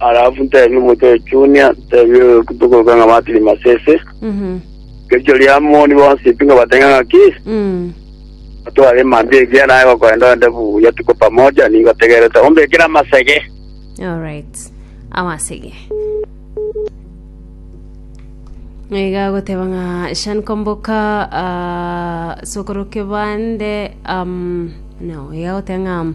Alafu ntebie omonto oyo Junia, ntebie oyo tokoroka ng'a Martin Masese, Mhm. rirochio ria moni bonsi pi ngobatenge ng'aki, Mm. atware emambia egiya naye gokorenda ende buya tuko pamoja, ningotegerete ombekere amasege. Alright. Amasege. Iga goteba ng'a Shan Komboka ah, sokoro kebande um, no iga goteba ng'a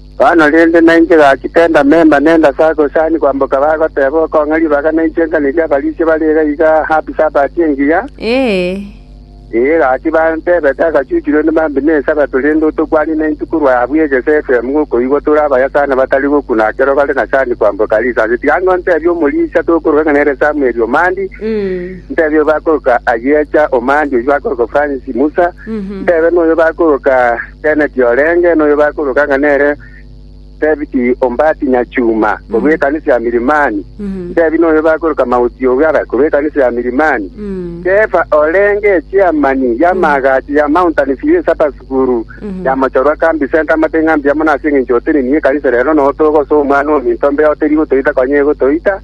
Bono rende nainche gaki tendamema nenda ase agosani kwamboka bagoteeba okong'a ribaga nainche nkanerie abarisia bare iga iga happy sabbath engiya. Ee gaki bantebete agachuchurwa onde mambi ne esabato rende otokwanie naintwe korwa abwo egese FM ngokoigwa tore abayasani batari gokuna ekero bare na sani kwamboka risaasi. Tiga ng'a ntebie omorisia tokoroka ng'a nere Samuel Omandi, ntebie oyo bakoroka Ayiecha Omandi oyio bakoroka Francis Musa, ntebe noyo bakoroka Inchene tiorenge noyo bakoroka ng'a nere Sebiti Ombati Nyachuma, korwa ekanisa ya Milimani. Intebi noyo bakoroka Mauti Ogara, korwa ekanisa ya Milimani. Kefa orenge echiamani y'amaagacho ya Mountain View Supper School ya mochorwa Kambi Centre amate ng'a mbuya mono ase engencho otenenie ekanisa rero notogosa omwana ominto mbe oterie gotoita konya egotoita.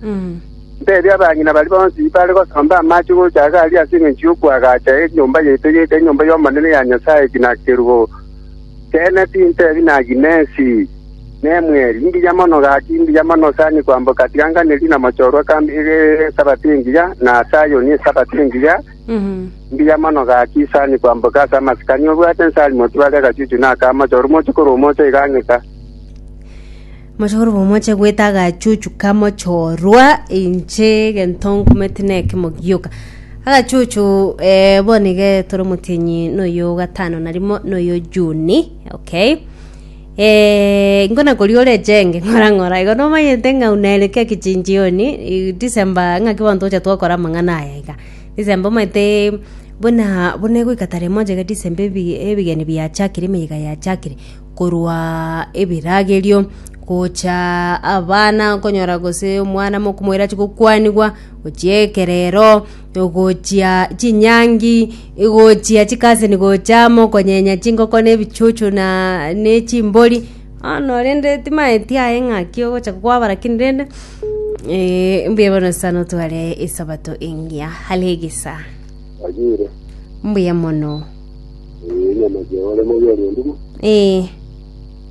Ntebia abang'ina baria bonsi bare gosomba amache gocha iga aria ase engencho y'okoagacha enyomba yaito egeika enyomba y'Omonene ya Nyasae ki na kerubo. Teene tintebi naki nensi nemweri, imbuya mono gaki, imbuya mono osani kwamboka, tiga nganerie na mochorwa kambe iga ere Esabato engiya, na Sayoni Esabato engiya, imbuya mono gaki, isani kwamboka ase amasikani, obwate nsari motibare agachuchu na aka mochorwa, moche korwa omocha iga ang'e ka. Mochokoro bomoche goeta agachuchu kamochorwa, inche egento nkometi nekemo gioka. Agachuchu eh, bono iga tore omotienyi noyo gatano na rimo noyo Juni, okay. Eh, nkona koria ore echenge ng'ora ng'ora igo nomanyete ng'a unaere kia kichinjioni i- December ng'aki bono togocha twakora amang'ana aya iga. December omanyete buna buna egoika tarehe moja iga December ebi- ebigeni biachakire emeyega yachakire. korwa ebiragerio, gocha abana okonyora gose omwana mokomoira achi gokwanigwa, gochia ekerero, gochia chinyangi, gochia chikasini gocha amo konyenya chingoko na ebichuchu na ne chimbori, bono rende timaeti aye ng'aki ogocha kwabara lakini rende mbuya bono sa notware esabato engiya are egesaa. Mbuya mono. Eh, nyamake ore moyo ore onduma. Eh,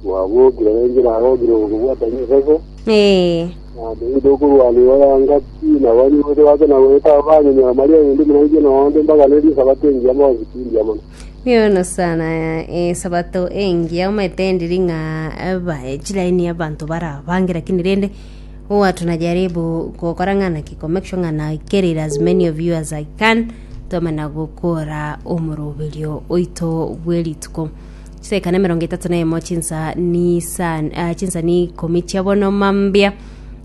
Wabokire bengira agokire gokobwata nyesese. eh, Ande ido okorwana iwaya ngati na bani bote bake na goeta abanyenya Maria yindi muraije na onde mpaka ne risabato engiya mbosi tindia mono. yono sana eh, sabato engiya omaete ndiri ng'a aba eh, chilaini abanto barabangera kini rende Hoo watu najaribu gokora ng'ana ki ko make sure ng'ana I carried as many of you as I can twamana gokora omoroberio oito bw'erituko chiseka na emerongo etato na emo chinsa ni sa ah, chinsa ni ikomi chia bono mambia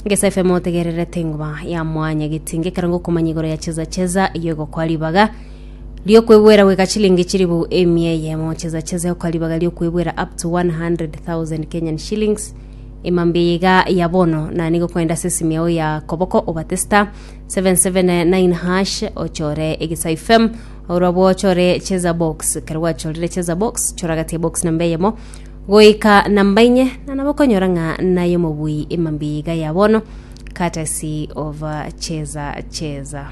ngesa FM otegererete ngoba ya mwanya getinge karango okomanya igoro ya cheza cheza iyo egokwa ribaga riokwebwera gweka chilingi chiribu emia eyemo cheza cheza yokwaribaga riokwebwera up to 100000 kenyan shillings Emambia eye iga ya bono, na nigo kwenda ase esimia yao ya koboko obate star 779 hash ochore egesai fm orwa bwo ochore cheza box kero gwachorire cheza box choragatie box namba eyemo goika namba inye na nabo okonyora ng'a naye omobui emambia eye iga ya bono courtesy of uh, cheza cheza